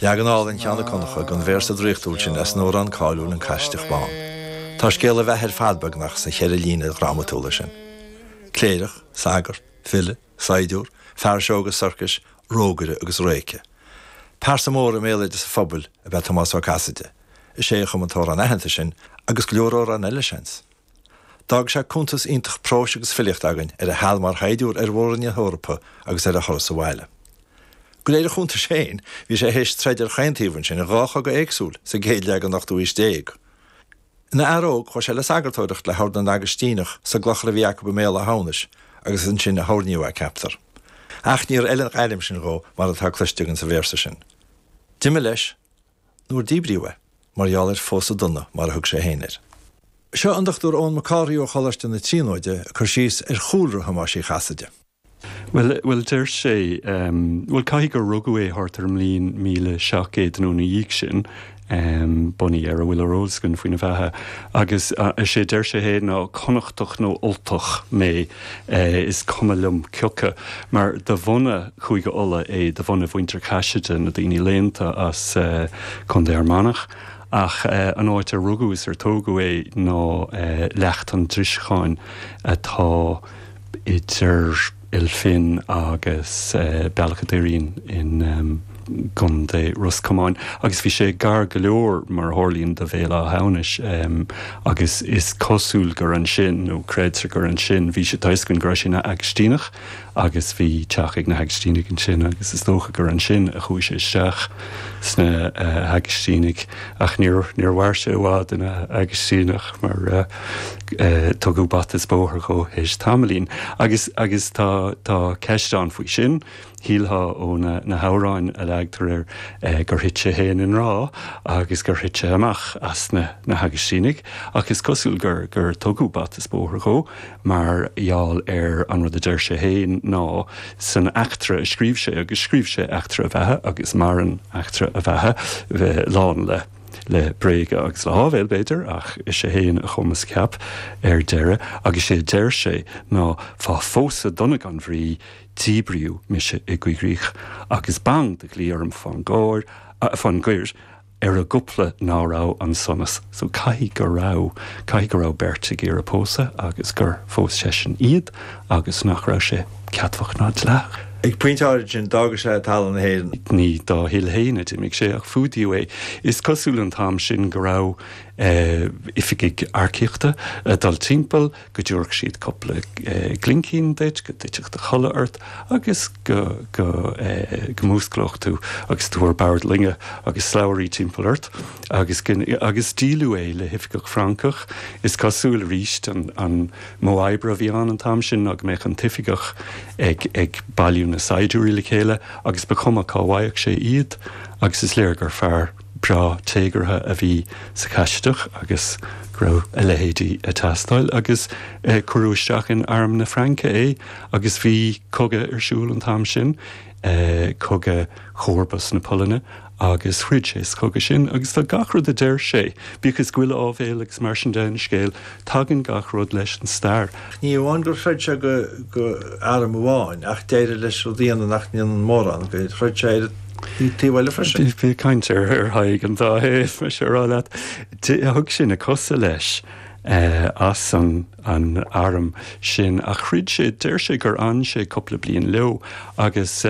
Leagan álainn Sheáin 'ac Dhonncha den véarsa draíochtúil sin as an amhrán cáiliúil An Caisideach Bán. Tá scéal a bheatha ar fad beagnach sna cheithre líne dhrámatúla sin. Cléireach, sagart, file, saighdiúr, fear seó agus sorcais, rógaire agus réice. Pearsa mór i mbéaloideas an phobail ab ea Tomás Ó Caiside. Is é a chum an t-amhrán aitheanta sin, agus go leor amhrán eile, seans. D'fhág sé cuntas iontach próis agus filíochta againn ar a sheal mar shaighdiúr ar mhór-roinn na hEorpa agus ar a thuras abhaile. De réir a chuntais féin, bhí sé théis troid ar chaon taobh ansin, in dhá chogadh éagsúil, sa gcéad leath den ochtú haois déag. Ina fhear óg, chuaigh sé le sagartóireacht le hOrd na nAgaistíneach sa gclochar a bhí acu i mBéal Átha hAmhnais agus is ansin a hoirníodh é, ceaptar. Ach níor fheil an ghairm sin dhó, mar atá cloiste againn sa véarsa sin. D'imigh leis. nuair díbríodh é mar gheall ar 'phósadh dona' mar a thug sé féin air. Seo an Dr Eoin Mac Cárthaigh ó Choláiste na Tríonóide ag cur síos ar chúlra Thomáis Uí Chaiside. Bhuel, bhuel, deir sé, bhuel, caithfidh gur rugadh é thart ar an mbliain míle seacht gcéad nó ina dhiaidh sin, bunaithe ar a bhfuil ar eolas againn faoina bheatha, agus is é a deir sé féin ná 'Connachtach nó Ultach mé'. Is cuma liom cioca, mar de bhunadh Chúige Uladh é, de bhunadh Mhuintir Chaiside, na daoine léannta as Contae Fhear Manach, ach an áit ar rugadh is ar tógadh é ná Leacht an Driseacháin atá idir Ail Finn agus Bealach a' Doirín i. gContae Ros Comáin, agus bhí sé gar go leor, mar a tharlaíonn, do Bhéal Átha hAmhnais, agus is cosúil gur ansin, nó creidtear gur ansin, bhí sé, tá a fhios againn go raibh sé ina Agaistíneach, agus bhí teach ag na hAgaistínigh ansin, agus is dócha gur ansin a chuaigh sé isteach sna hAgaistínigh, ach níor, níor mhair sé i bhfad ina Agaistíneach, mar tugadh bata is bóthar dhó théis tamaillín. Agus, agus tá, tá ceist ann faoi sin. Shílfeá ó na hamhráin a leagtar air gur thit sé féin i ngrá agus gur thit sé amach as na hAgaistínigh, ach is cosúil gur tugadh bata is bóthar dhó mar gheall ar an rud a deir sé féin ná san eachtra a scríobh sé, agus scríobh sé eachtra a bheatha agus maireann eachtra a bheatha, lán le, le bréaga agus le háibhéil, b'fhéidir, ach is é féin a chum is a cheap ar deireadh, agus is é a deir sé ná fá phósadh dona gan bhrí, Díbríodh mise i gcoigrích agus bang de dhlí orm fán gcóir, ah, fán gcoir, ar an gcúpla ná raibh an sonas. So caithfidh go raibh, caithfidh go raibh beirt ag iarraidh pósadh agus gur phós seisean iad agus nach raibh sé ceadmhach ná dleathach. Ag pointe áirid sin, d'fhága sé talamh na hÉireann. Ní dá thoil fhéin a d'imigh sé ach fuadaíodh é. Is cosúil an t-am sin go raibh, eh, oifigigh earcaíochta ag dul timpeall. go dtiúrfadh siad cúpla glincín duit, go dtitfeadh do chodladh ort agus go músclódh tú agus tú ar bord loinge agus slabhraí timpeall ort agus agus díoladh é le hoifigeach Francach, is cosúil, arís an modh oibre a bhí ann an t-am sin ná go mbeadh an t-oifigeach ag bailiú na saighdiúirí le chéile agus ba chuma cá bhfaigheadh sé iad agus is léir gur fear breá téagartha a bhí sa Chaisideach agus go raibh a leithéidí ag teastáil agus cuireadh isteach in Arm na Fraince é agus bhí cogadh ar siúl an t-am sin, Cogadh Chomharbas na Polainne agus throid sé sa chogadh sin agus tá gach rud a deir sé, bíodh is go bhfuil áibhéil agus mar sin de ina scéal, Tagann gach rud leis an stair. Ach ní amháin gur throid sé do arm amháin, ach d'éirigh leis rud a dhéanamh nach ndéanann mórán, gur throid sé ar an taobh eile freisin. Bhí caint ar Thadhg an dá thaobh, is é a rá leat. Thug sé na cosa leis as an arm sin, ach throid sé, deir sé gur fhan sé cúpla bliain leo agus,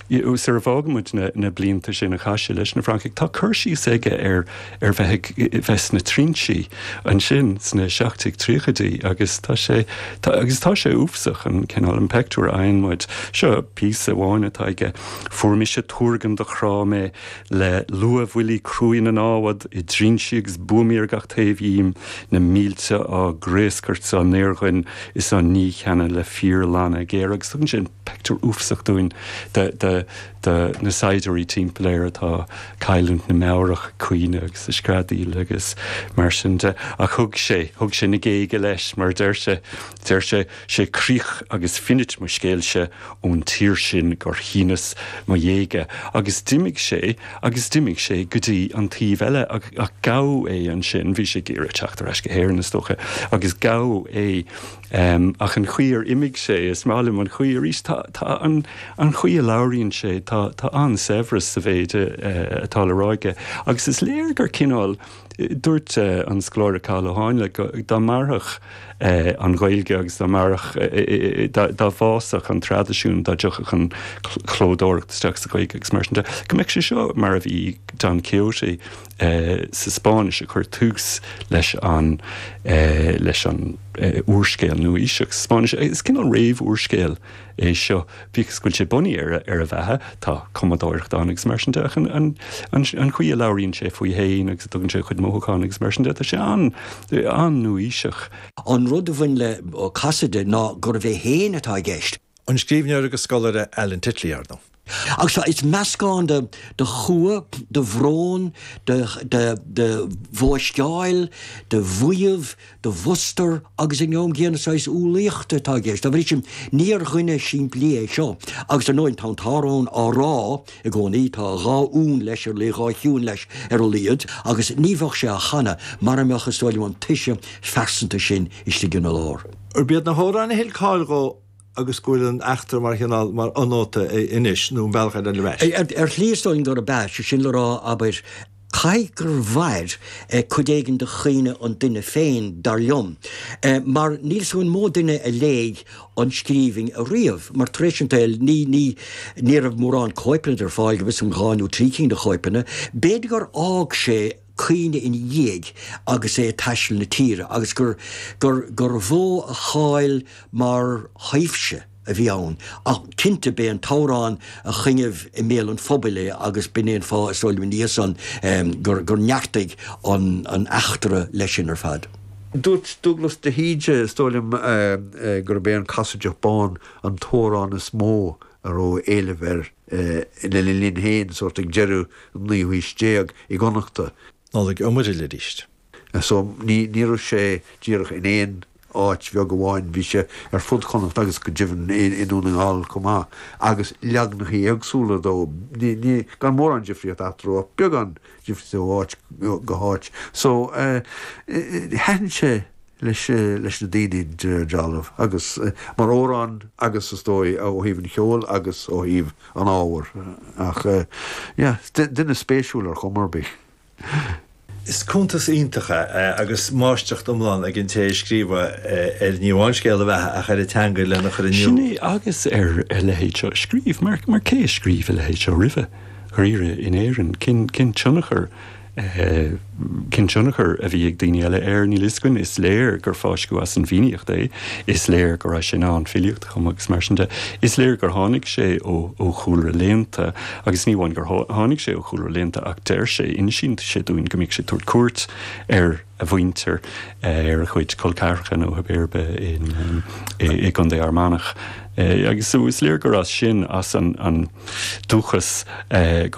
Sara bhfágann muid na blianta sin a chaith sé leis na Francaigh, tá cur síos aige ar ar bheith a bheith sna trinsí ansin sna seacht déag tríochaidí agus tá sé agus tá sé uafasach an cineál an pictiúr a fhaigheann muid. Seo píosa amháin atá aige, Fuair mise tuargan do chráigh mé le luathbhuillí cruaidh na námhad, i dtrinsí agus buamaí ar gach taobh dhíom, na mílte á gcraoscairt 's á ndaorghoin is á ndícheannadh le fíorlanna géara agus tugann sé an pictiúr uafasach dúinn de na saighdiúirí timpeall air atá ag cailliúint na meabhrach ag caoineadh agus ag screadaíl agus mar sin de ach thug sé thug sé na géaga leis mar deir sé deir sé sé críoch agus finit mo scéilse ón tír sin gur shíneas mo ghéaga agus d'imigh sé agus d'imigh sé go dtí an taobh eile ach gabhadh é ansin bhí sé ag iarraidh teacht ar ais go hÉirinn is dócha agus gabhadh é Ach an chaoi ar imigh sé, is maith liom an chaoi arís. Tá, tá an, an chaoi a labhraíonn sé, tá, tá an-saibhreas sa mhéid atá le rá aige. Agus is léir gur cineál, dúirt an scoláire Cathal Ó Háinle go, dá mairfeadh an Ghaeilge agus dá mairfeadh, dá, dá bhfásfadh an traidisiún, dá dtiocfadh an chlódóireacht isteach sa Ghaeilge agus mar sin de, go mbeadh sé seo mar a bhí Don Quixote. sa Spáinnis a chuir tús leis an leis an úrscéal nua-aoiseach sa Spáinnis. Is cineál réamh-úrscéal é seo, bíodh is go bhfuil sé bunaithe ar a ar a bheatha. Tá cumadóireacht ann agus mar sin de ach an an an an chaoi a labhraíonn sé faoi fhéin agus a dtugann sé a chuid mothúchán agus mar sin de, tá sé an an-nua-aoiseach. An rud a bhain le Ó Casaide ná gurbh é féin atá i gceist. An scríbhneoir agus scoláire Alan Titley, arnó. Ach seo, is meascán de chumha, de bhrón, de bhóisteáil, de mhaíomh, de mhustar agus in am gcéanna saghas umhlaíochta atá i gceist. Dá bhrí sin, níor dhuine simplí é seo. Agus ar ndóigh, tá an t-amhrán á rá i gcónaí, tá dhá fhonn leis ar, dhá thiúin leis ar a laghad, agus ní bheadh sé á chanadh mara mbeadh, is dóigh liom, an toise phearsanta sin istigh ina lár. Arbh iad na hamhráin a thuill cáil dhó agus go bhfuil an eachtra mar chineál, mar fhonóta anois, nó an bealach eile. Ar shlí is dóigh gurb ea, sé sin le rá, abair, caithfidh gur mhair cuid éigin de chuimhne an duine féin, dar liom, mar níl a fhios agam an mó duine a léigh an scríbhinn ariamh, mar tar éis an tsaoil, ní, ní, ní raibh mórán cóipeanna de ar fáil, go bhfios dom, dhá nó trí cinn de chóipeanna, b'fhéidir gur fhág sé. cuimhne ina dhiaidh agus é ag taisteal na tíre agus gur gur gur mhó a cháil mar thaibhse a bhí ann ach cinnte b'é an t-amhrán a choinnigh i mbéal an phobail é agus b'in é an fáth is dóigh liom níos, gur gur neartaigh an an eachtra leis sin ar fad. Dúirt Dúglas de hÍde, is dóigh liom, gurb é An Casaideach Bán an t-amhrán is mó a raibh éileamh air lena linn féin, sórt ag deireadh an naoú haois déag i gConnachta. Nollaig Ó Muraíle arís. So, ní raibh sé díreach in aon áit bheag amháin, bhí sé ar fud Chonnacht agus go deimhin i nDún na nGall chomh maith, agus leagnachaí éagsúla dó, gan mórán difríocht eatarthu ach beagán difríochta ó áit go háit. So, thaitin sé. leis na daoine de dhealramh agus mar amhrán agus is dóigh ó thaobh an cheoil agus ó thaobh an ábhair ach yeah duine spéisiúil ar chuma ar bith. Is cuntas iontach é agus máistreacht iomlán ag an té a scríobh é ar ní amháin scéal a bheatha ach ar a teanga lena chur in iúl. Sin é agus ar a leithéid seo a scríobh mar cé a scríobh a leithéid seo roimhe, dháiríre, in Éirinn? Cén tionchar? Cén tionchar a bhí ag daoine eile air? Níl a fhios againn. Is léir gur fáisceadh as an bhFiannaíocht é. Is léir go raibh sé in ann filíocht a chumadh agus mar sin de. Is léir gur tháinig sé ó chúlra léannta agus ní amháin gur tháinig sé ó chúlra léannta ach deir sé, insíonn sé dúinn go mbíodh sé ag tabhairt cuairt ar a mhuintir, ar a chuid col ceathracha nó Ab Uirbe i gContae Fhear Manach. Agus is léir gur as sin, as an dúchas, go.